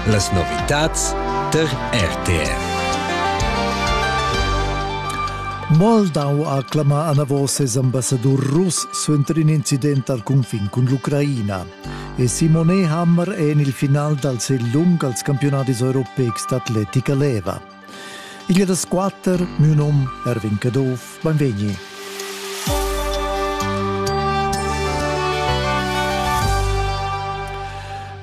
Las novitads tar RTR. Moldau ha clamà anavos ses ambassadur russ suenter in incident al cunfin cun l'Ucraina. E Simone Hammer è en il final dal sel lung als campionadis europeics d'atletica leva. Igl è da squatter, miu num Erwin Caduff, beinvegni.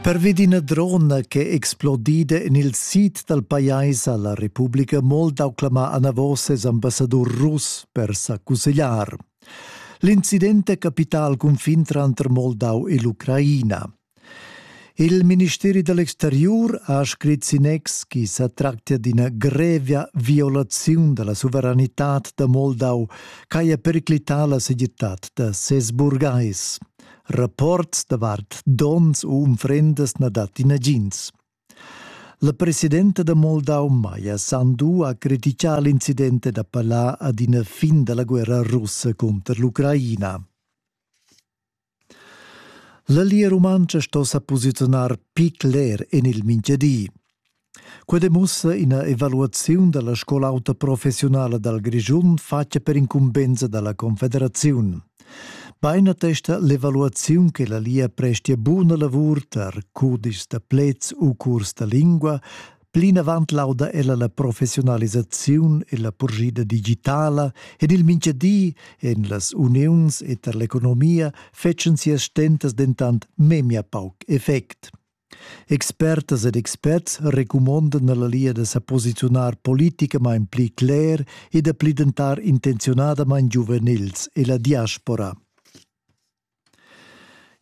Pervi d'ina drona che è explodida en il sid dal pajais a la Republica Moldau clamà anavos ses ambassadur russ per sa cussegliar. L'incident è capità al cunfin tranter Moldau e l'Ucraina. Il ministeri da l'exteriur ha scrit sin ex chi sa tractia d'ina grevia violaziun da la suveranitad da Moldau ch'haja periclità la segirtad da ses burgais. Rapports davart donns u unfrendas na dat nagins. La presidenta da Moldau Maja Sandu ha criticà l'incident da Palà ad ina fin da la guerra russa cunter l'Ucraina. La Lia Rumantscha sto sa posiziunar picc ler en il mintgadi. Quei demussa ina evaluaziun dalla scola auta professionala dal Grischun fatta per incumbensa dalla Confederaziun. Bein attesta l'evaluaziun che la Lia prestia buna lavur tar cudischs da plets u curs da lingua Plinavant lauda ella la professiunalisaziun e la purschida digitala ed il mintgadi en las uniuns e tar l'economia fetschan sias stentas dentant memia pauc effect. Expertas ed experts recumondan alla Lia da sa posiziunar politicamain pli cler e da pli dentar intenziunadamain giuvenils e la diaspora.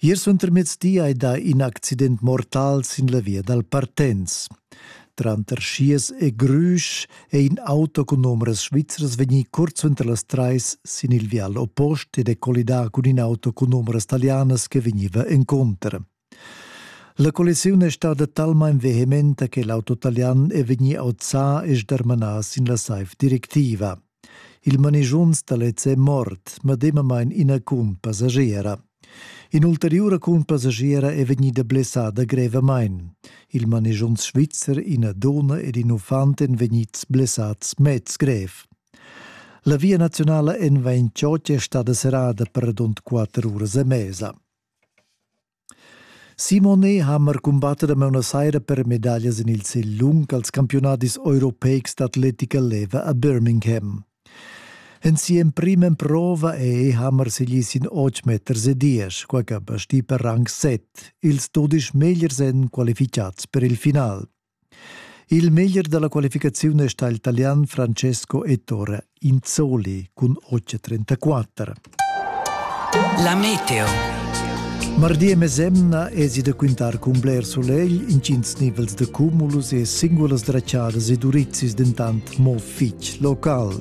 Ier suentermiezdi hai dà in accident mortal sin la via dal Partenz. Tranter Schiers e Grüsch è in auto cun numeras svizras vegnì kurz unter las trais sin il vial oppost ed è collidà cun in auto cun numeras talianas che vegniva encontro. La collisiun è stada talmain vehementa che l'auto talian è vegnì auzà e sdermanà sin la saiv directiva. Il manigiunz da lez è mort, medemamain ina cunpassagiera. In'ulteriura cunpassagiera è vegnida blessada grevamain. Il manigiunz svizzer, ina donna ed in uffant èn vegnids blessads mez grev. La via nazionala N28 è stada serrada per rund quatter uras e mesa. Simonet ha amar cumbatta da mauna saira per medaglias en il sigl lung als campiunadis europeics d'atletica leva a Birmingham. En si'emprima emprova è Hammer segli sin 8 meters e 10, quai che basti per rang 7, ils dudisch megliers èn qualificads per il final. Il meglier dalla qualificaziun è stà il talian Francesco Ettore Inzoli cun 8.34. La meteo. Mardi e mesemna esi da quintar cun bler solegl, intgins nivels de cumulus e singulas draciadas e durizis dentant mo fitg local.